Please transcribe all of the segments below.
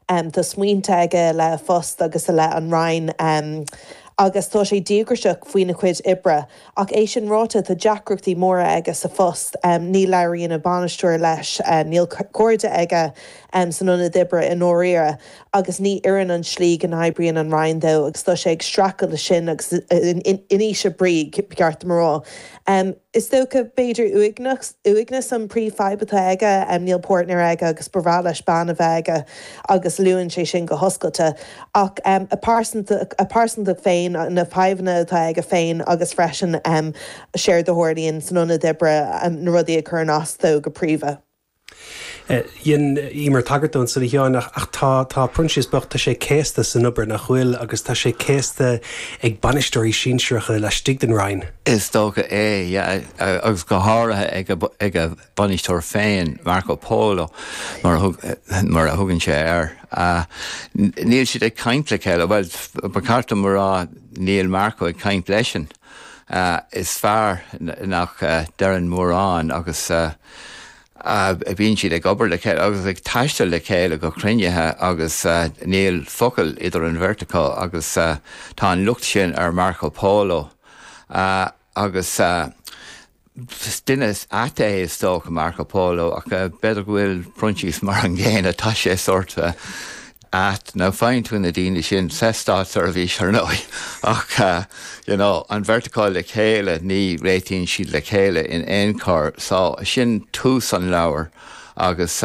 Tá smaointe aige i leith a phoist agus i leith an Roinn agus tá sé díograiseach faoina chuid oibre. Ach é sin ráite, tá deacrachtaí móra aige sa phost. Ní labhraíonn a bhainisteoir leis, níl cairde aige san ionad oibre i ndáiríre agus ní oireann an tslí go n-oibríonn an Roinn dó agus tá sé ag streachailt leis sin agus in ísle brí, ba cheart dom a rá. Is dócha, b'fhéidir, uaigneas, uaigneas an príomhfhadhb atá aige, níl páirtnéir aige agus ba bhreá leis bean a bheith aige agus luann sé sin go hoscailte. Ach a pearsantacht, a pearsantacht féin, na fadhbanna atá aige féin agus freisin an saghas rud a tharlaíonn san ionad oibre, na rudaí a chuireann as dó go príomha. Rinne Emer tagairt dó ansin, a Sheáin, ach tá, tá Proinsias bocht, tá sé céasta san obair, nach bhfuil, agus tá sé céasta ag bainisteoirí sinsearacha laistigh den Roinn. Is dócha é, yeah, agus go háirithe ag a, ag a bhainisteoir féin, Marco Polo, mar a thug, mar a thugann sé air. Níl siad ag caint le chéile, bhuel, ba cheart dom a rá, níl Marco ag caint leisean. Is fear nach ndeireann mórán agus. Bíonn siad ag obair le chéile agus ag taisteal le chéile go cruinnithe agus níl focal idir an bheirt acu agus tá an locht sin ar Marco Polo agus duine ait é is dócha Marco Polo ach b'fhéidir go bhfuil Proinsias mar an gcéanna, tá sé sórt Ait nó faigheann tú na daoine sin sa státseirbhís, ar ndóigh, ach you know, an bheirt acu le chéile, ní réitíonn siad le chéile in aon chor. So sin tús an leabhair agus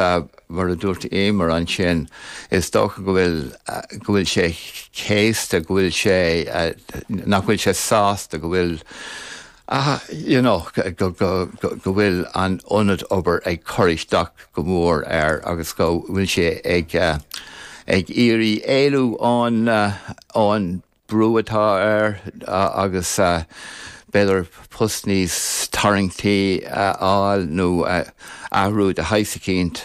mar a dúirt Emer ansin, is dócha go bhfuil, go bhfuil sé céasta, go bhfuil sé, nach bhfuil sé sásta go bhfuil, ach you know go bhfuil an ionad obair ag cur isteach go mór air agus go bhfuil sé ag ag iarraidh éalú ón ón brú atá air agus b'fhéidir post níos tarraingtí a fháil nó athrú de shaghas eicínt.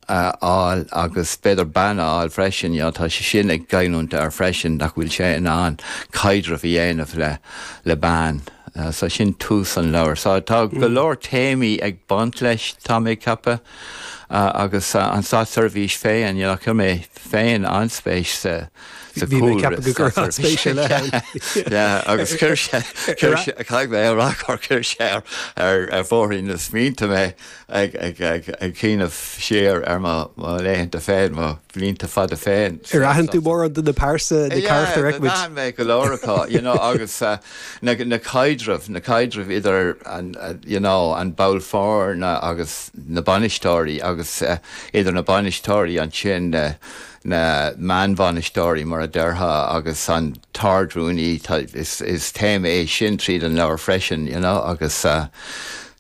a fháil agus b'fhéidir bean a fháil freisin, you know, tá sé sin ag goilliúint air freisin, nach bhfuil sé in ann caidreamh a dhéanamh le, le bean. So sin tús an leabhair. So tá go leor téamaí ag baint leis, tá mé ag ceapadh, agus an Státseirbhís féin, you know, chuir mé féin an-spéis sa, sa Bhí mé ag ceapadh go gcuirfeá spéis ar leith ann. Yeah, agus chuir sé, chuir sé, caithfidh mé a rá gur chuir sé ar, ar, ar bhóithrín na smaointe mé. ag cuimhneamh siar ar mo laethanta féin, mo bhlianta fada féin. Ar aithin tú mórán de na pearsa, na carachtair a fheicimid? Yeah, d'aithin mé go leor acu, you know agus na caidrimh, na caidrimh idir an, you know, an ball foirne agus na bainisteoirí agus idir na bainisteoirí ansin, na meánbhainisteoirí mar a déarfá agus an tArdrúnaí, is téama é sin tríd an leabhar freisin, you know agus.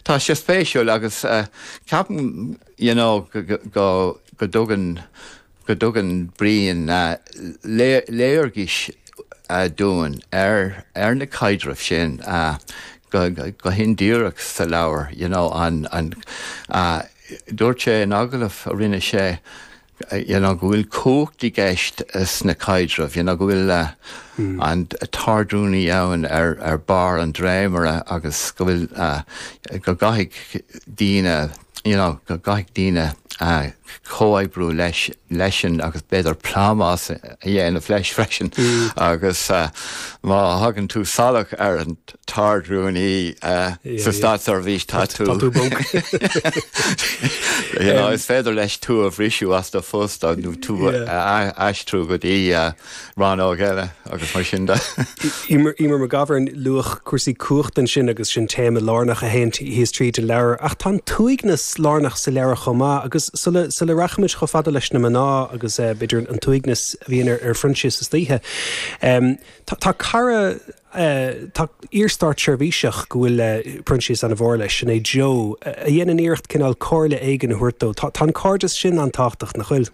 Tá sé spéisiúil agus ceapaim you know go dtugann go dtugann Brian léargas dúinn ar ar na caidrimh sin go hindíreach sa leabhar you know an dúirt sé in agallamh a rinne sé you know, go bhfuil cumhacht i gceist sna caidrimh, you know, go bhfuil an t-ardrúnaí ann ar barr an dréimire agus go bhfuil, go gcaithfidh daoine, you know, go gcaithfidh daoine comhoibriú leis, leis-sean agus b'fhéidir plámás a dhéanamh leis freisin agus má thagann tú salach ar an. tArd-Rúnaí sa Státseirbhís tá tú bog. Is féidir leis tú a bhriseadh as do phost nó tú a aistriú go dtí rannóg eile agus mar sin de. Emer McGovern, luadh cúrsaí cumhachta ansin agus sin téama lárnach a théann síos tríd an leabhar. Ach tá an t-uaigneas lárnach sa leabhar chomh maith agus sula rachaimid chomh fada leis na mná agus b'fhéidir an t-uaigneas a bhíonn ar Phroinsias istoíche, tá cara, Tá iar-státseirbhíseach go bhfuil Proinsias ana-mhór leis, sin é Joe, a dhéanann iarracht cineál comhairle éigin a thabhairt dó. Tá an cairdeas sin an-tábhachtach, nach bhfuil?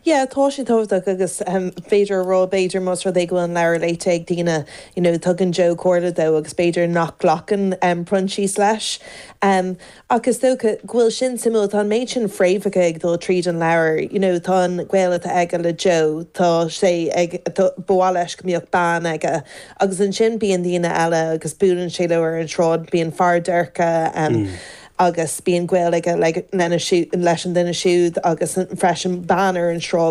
Yeah, tá sé tábhachtach agus b'fhéidir a rá, b'fhéidir, más rud é go bhfuil an leabhar léite ag daoine, you know, tugann Joe comhairle dó agus b'fhéidir nach nglacann Proinsias leis. Ach is dócha go bhfuil sin suimiúil, tá an méid sin fréamhacha ag dul tríd an leabhar, you know tá an gaol atá aige le Joe, tá sé ag, ba mhaith leis go mbeadh bean aige agus ansin bíonn daoine eile agus buaileann sé leo ar an tsráid, bíonn fear déirce ann agus bíonn gaol aige lena, leis an duine siúd agus freisin bean ar an tsráid.